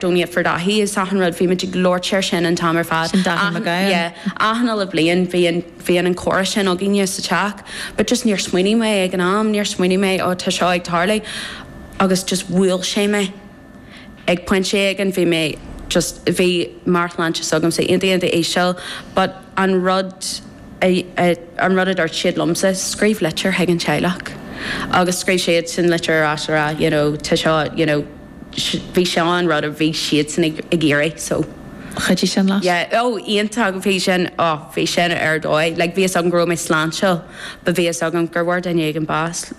Don't eat for dathanna is achan rud, bhímid ag labhairt air sin an t-am ar fad. Sin daithí na gcáil. Yeah, achan uile bhliain bhíonn, bhíonn an comhrá sin againne sa teach but just níor smaoinigh mé ag an am, níor smaoinigh mé oh tá seo ag tarlú agus just bhuail sé mé ag pointe éigin, bhí mé just, bhí meabhairshláinte s'agamsa, iontach, iontach íseal but an rud a, a, an rud a dúirt siad liomsa, scríobh litir chuig an teaghlach agus scríobh siadsan litir ar ais a rá you know tá seo you know. bhí seo an rud a bhí siadsan ag ag iarraidh so. Chuidigh sin leis? Yeah, oh, iontach, bhí sin, oh, bhí sin ar dóigh, like, bhí fhios agam go raibh mé sláintiúil but bhí fhios agam gur bhfuair duine éigin bás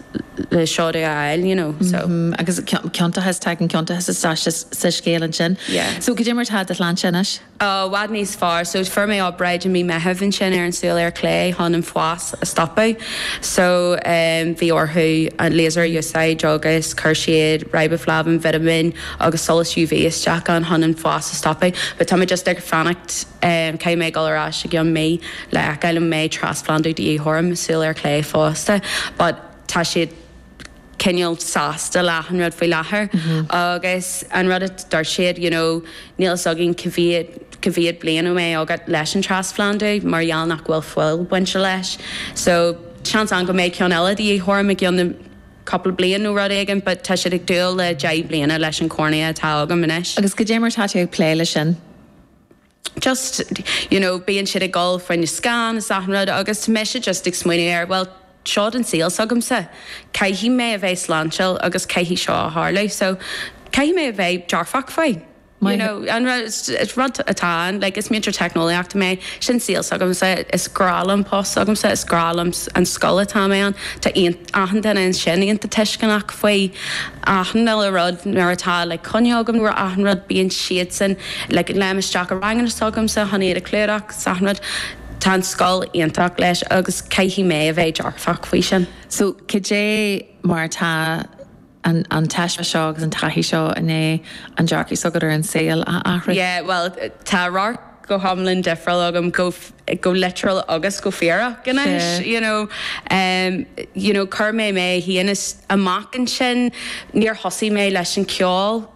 le seo a fháil, you know, so. Mm-hmm, agus cionn, ciontachas, tagann ciontachas isteach sa scéal ansin. Yeah. So, cad é mar atá do shláinte anois? i bhfad níos fearr. So fuair mé obráid i mí Meitheamh ansin ar an súil ar chlé chun an fás a stopadh. So bhí orthu an laser a úsáid agus chuir siad riboflavin, vitimín agus solas UV isteach ann chun an fás a stopadh. But tá mé just ag fanacht, caithfidh mé ag dul ar ais i gceann mí le feiceáil an mbeidh trasphlandú de dhíth orm i súil ar chlé fosta. But tá siad. cineál sásta leis an rud faoi láthair agus an rud a dúirt siad you know níl fhios againn cá mhéad cá mhéad bliain a mbeidh agat leis an trasphlandú mar gheall nach bhfuil fuil bainte leis so seans ann go mbeidh ceann eile de dhíth orm i gceann na cúpla bliain nó rud éigin but tá siad ag dúil le deich bliana leis an chornea atá agam anois. Agus cad é mar tá tú ag plé le sin? just, you know, bíonn siad ag gabháil faoin scian is achan rud agus tá mise just ag smaoineamh ar, bhuel, seo an saol s'agamsa, caithfidh mé a bheith sláintiúil agus caithfidh seo a tharlú so caithfidh mé a bheith dearfach faoi, you know, an rud, is rud atá ann, like is múinteoir teicneolaíochta mé, sin saol s'agamsa, is grá liom post s'agamsa, is grá liom an scoil atá mé ann, tá aon. achan duine ansin iontach tuisceanach faoi achan uile rud nuair atá like coinne agam nó achan rud bíonn siadsan like léim isteach i ranganna s'agamsa chun iad a chlúdach 's achan rud tá an scoil iontach leis agus caithfidh mé a bheith dearfach faoi sin. So cad é mar atá? an taisme seo agus an taithí seo i ndiaidh an dearcadh s'agat ar an saol a athrú? Yeah, bhuel, tá radharc go hiomlán difriúil agam, go, go litriúil agus go fíorach anois, you know. Em, you know, chuir mé mé fhéin amach ansin, níor thosaigh mé leis an cheol,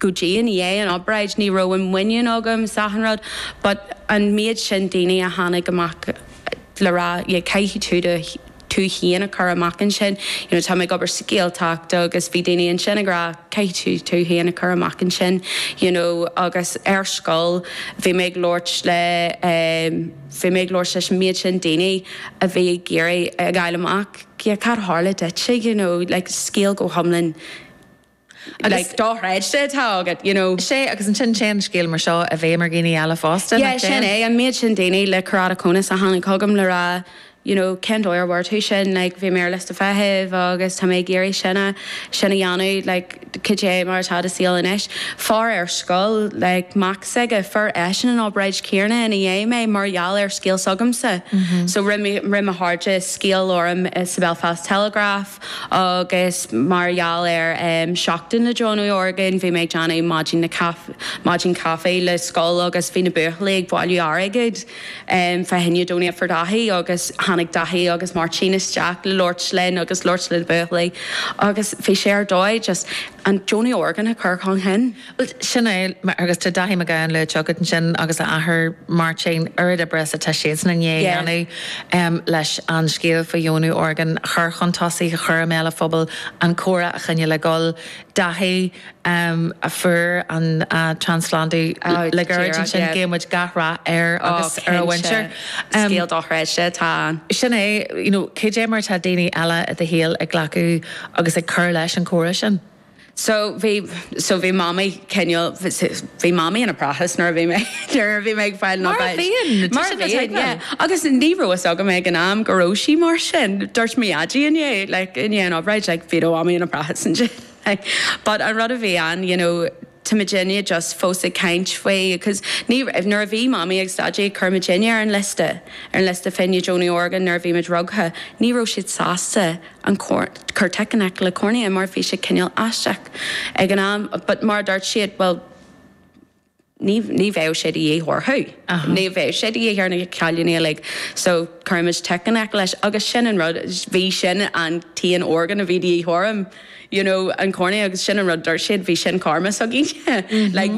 go dtí i ndiaidh an obráid ní raibh an muinín agam sachan rud but an méid sin daoine a tháinig amach le rá yeah caithfidh tú do tú féin a chur amach ansin you know tá mé ag obair sa Ghaeltacht agus bhí daoine ansin ag rá caithfidh tú tú féin a chur amach ansin you know agus ar scoil bhí mé ag labhairt le eh bhí mé ag labhairt leis an méid sin daoine a bhí ag iarraidh a fháil amach yeah cad a tharla duitse you know like scéal go hiomlán Agus dá thread de atá agat, you know. Sea, agus ansin téann an scéal mar seo, i bhfeidhm ar dhaoine eile fosta, nach dtéann? Yeah, sin é, an méid sin daoine le keratoconus a tháinig chugam le rá you know cén dóigh a bhfuair tú sin, like bhí mé ar liosta feithimh agus tá mé ag iarraidh sin a, sin a dhéanamh, like cad é mar atá do saol anois? Fear ar scoil, like mac s'aige, fuair eisean an obráid chéanna ina dhiaidh mé mar gheall ar scéal s'agamsa. So rith mo chairde scéal orm sa Belfast Telegraph, Agus mar gheall ar Seachtain na Deonú Orgán, bhí mé ag déanamh maidin maidin caife le scoil agus bhí na buachaillí ag bailiú airgid fá choinne Donate for Dáithí agus tháinig Dáithí agus Máirtín isteach le labhairt linn agus labhairt le na buachaillí agus bhí sé ar dóigh just an deonú orgán a chur chun chinn. Bhuel, sin é, agus tá Dáithí Mac Gabhann luaite agat ansin, agus a athair, Máirtín, oiread oibre is atá siadsan i ndiaidh a dhéanamh leis an scéal faoi dheonú orgán a chur chun tosaigh, a chur i mbéal an phobail, an comhrá a choinneáil ag dul. Dáithí a fuair an trasphlandú le gairid ansin, guíonn muid gach rath air agus ar a mhuintir. Cinnte, scéal dochreidte atá ann. Sin é, you know, cad é mar atá daoine eile i do shaol ag glacadh agus ag cur leis an chomhrá sin? So bhí, so bhí mamaí cineál, bhí mamaí ina prácás nuair a bhí mé, nuair a bhí mé ag fáil na Mar a bhfeighil. bhíonn, tá Mar a sé go bhíonn, yeah. teicniúil. Agus ní raibh fhios agam ag an am go raibh sí mar sin. Dúirt mo dhaidí i ndiaidh, like, i ndiaidh an obráid, like, bhí do mhamaí ina prácás ansin, like. But an rud a bhí ann, you know, tá muidne just fós ag caint faoi cause ní raibh nuair a bhí mamaí agus daidí ag cur muidne ar an liosta ar an liosta fá choinne deonú orgán nuair a bhí muid rugtha ní raibh siad sásta an cor cur tic in aice le cornea mar bhí sé cineál aisteach ag an am but mar a dúirt siad well ní ní bheadh sé de dhíth orthu ní bheadh sé de dhíth ar na cailíní uilig so cuirfimid tic in aice leis agus sin an rud bhí sin an t-aon orgán a bhí de dhíth orm you know, an cornea agus sin an rud dúirt siad bhí sin karma s'againne like.